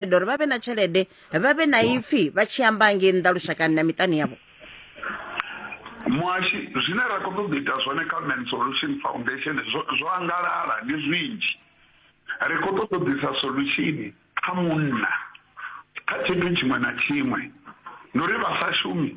tshelede uri vha vhe na tshelede vha vhe na ipfi vha tshi amba ngei nnḓa lushakani na miṱani yavho muhashi zwine ra khou ṱoḓa ita zwone kha man solution foundation zwo angalala ndi zwinzhi ri khou ṱoḓa u ḓisa solution kha munna kha tshithu tshiṅwe na tshiṅwe ndi uri vha sa shumi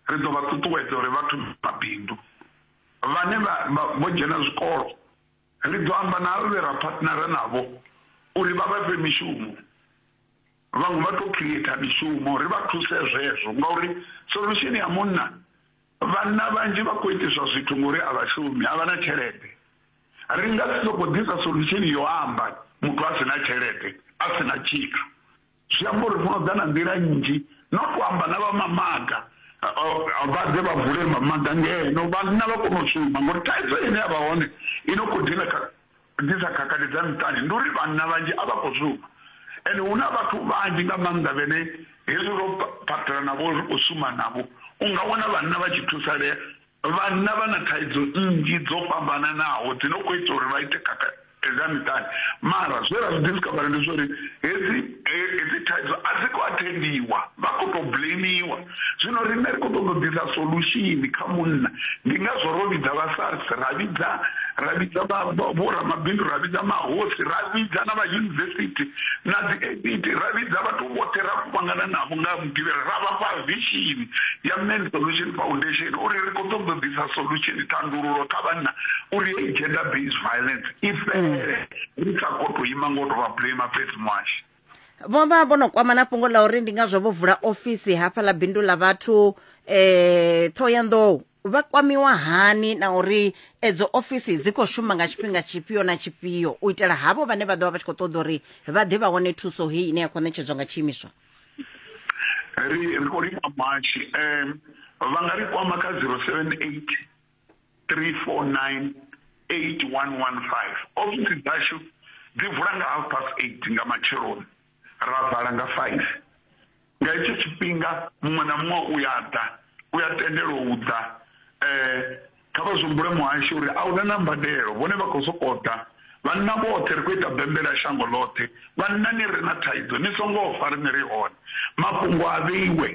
ri ḓo vha ṱuṱuwedza uri vhathu mabindu vhane vho dzhena zwikolo Ri ḓo amba na avho vhe ra phatnara navho uri vha vha fhe mishumo. Vhaṅwe vha tou khireitha mishumo, ri vha thuse zwezwo ngauri solusheni ya munna, vhanna vhanzhi vha khou itiswa zwithu ngori a vha shumi, a vha na tshelede. Ri nga si sokou ḓisa solusheni yo amba muthu a si na tshelede, a si na tshithu. Zwi amba uri muno ḓa na nḓila nnzhi no to amba na vha mamaga vha ḓe vha vule mamaga ngeno vhanna vha kone u shuma ngori thaidzo ine ya vha hone i no khou dina disa khakhathi dza miṱani ndi uri vhanna vhanzhi a vha khou shuma ende hu na vhathu vhanzhi nga maanḓa vhene hezwi ro phaṱhela navho ri khou shuma navho u nga wana vhanna vha tshi thusalea Vhanna vha na thaidzo nnzhi dzo fhambananaho dzi no khou ita uri vha ite khakha thaidzo ya miṱani mara zwe ra zwi discover ndi zwori hedzi hedzi thaidzo a dzi khou athendiwa vha khou tou blamiwa zwino riṋe ri khou ṱoḓa u ḓisa solution kha munna ndi ngazwo ro vhidza vha SARS ra vhidza ra vhidza vho ramabindu ra vhidza mahosi ra vhidza na vha yunivesithi na dzi APT ra vhidza vhathu vhoṱhe ra kuvhangana navho nga Mugivhela ra vha fha vishini ya Men's Solution Foundation uri ri khou ṱoḓa u ḓisa solution, thandululo, kha vhanna uri heyi gender based violence i fhele ri sa khou tou ima nga u tou vha blamer fhedzi muhashi. Vho vha vho no kwama na fhungo ḽa uri ndi ngazwo vho vula ofisi hafha ḽa bindu ḽa vhathu eh Thohoyanḓou vha kwamiwa hani na uri edzo ofisi dzi khou shuma nga tshifhinga tshifhio na tshifhio u itela havho vhane vha ḓo vha vha tshi khou ṱoḓa uri vha ḓe vha wane thuso heyi ine ya khou ṋetshedzwa nga tshiimiswa ri ri khou livha matshi um vha nga ri kwama kha zero seven eight three four nine eight one one five ofisi dzashu dzi vula nga half past eight nga matsheloni ra vala nga five nga hetsho tshifhinga muṅwe na muṅwe u ya ḓa u ya tendelwa u ḓa um Kha vha zwi humbule muhashi uri a hu na na mbadelo, vhone vha khou sokou ḓa. Vhanna vhoṱhe ri khou ita bembele ya shango ḽoṱhe. Vhanna ni re na thaidzo ni songo fa, riṋe ri hone. Mafhungo a vheiwe,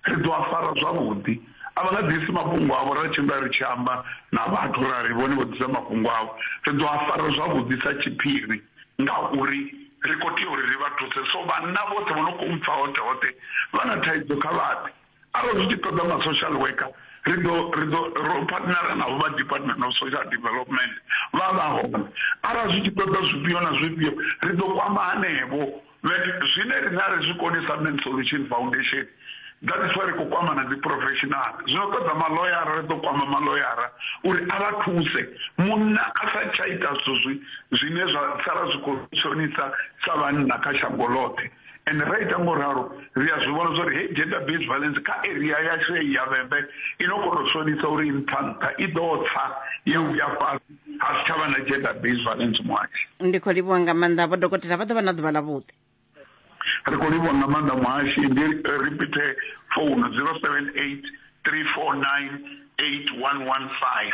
ri ḓo a fara zwavhuḓi. A vha nga ḓisi mafhungo avho, ra tshimbila ri tshi amba na vhathu ra ri vhone vho ḓisa mafhungo avho. Ri ḓo a fara zwavhuḓi sa tshiphiri ngauri ri khou tea uri ri vha thuse. So vhanna vhoṱhe vho no khou mpfa hoṱhe hoṱhe vha na thaidzo kha vha ḓe. Arali zwi tshi ṱoḓa ma social worker ri ḓo ri ḓo ro partnera navho vha department of social development vha vha hone arali zwi tshi ṱoḓa zwifhio na zwifhio ri ḓo kwama hanevho zwine riṋe a ri zwi koni sa men solution foundation that is why ri khou kwama na dzi professional zwino ṱoḓa maloyara ri ḓo kwama maloyara uri a vha thuse munna a sa tsha ita zwithu zwi zwine zwa sala zwi khou shonisa sa vhanna kha shango ḽoṱhe Ende ra ita ngo ralo, ri a zwi vhona zwa uri heyi gender based violence kha area yashu heyi ya Vhembe i no khou tou sonisa uri i nṱha nṱha, i ḓo tsa ya vhuya fhasi ha si tsha vha na gender based violence muhashi. Ndi khou livhuwa nga maanḓa vho dokotela, vha ḓo vha na ḓuvha ḽavhuḓi. Ri khou livhuwa nga maanḓa muhashi, ndi ripithe founu 078 349 8115.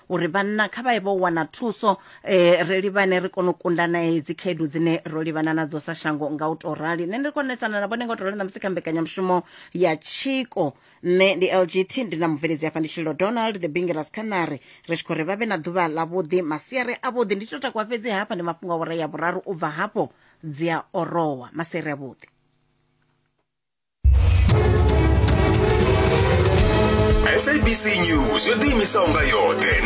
uri vhanna kha vha ye vho wana thuso eh, ri livhane ri kone u kunda na hedzi khaedu dzine ro livhana nadzo sa shango nga u tou rali nṋe ndi konetsana na vhone nga u tou rali na musi kha mbekanyamushumo ya tshiko nṋe ndi lgt ndi na mubveledzi hafha ndi tshilo donald the bingeras canary ri tshi khou ri vha vhe na ḓuvha ḽavhuḓi masiari avhuḓi ndi to takuwa fhedzi hafha ndi mafhungo a wora ya vhuraru u bva hafho dzi a orowa masiari avhuḓi sabc news yo ḓiimisaho nga yoṱhe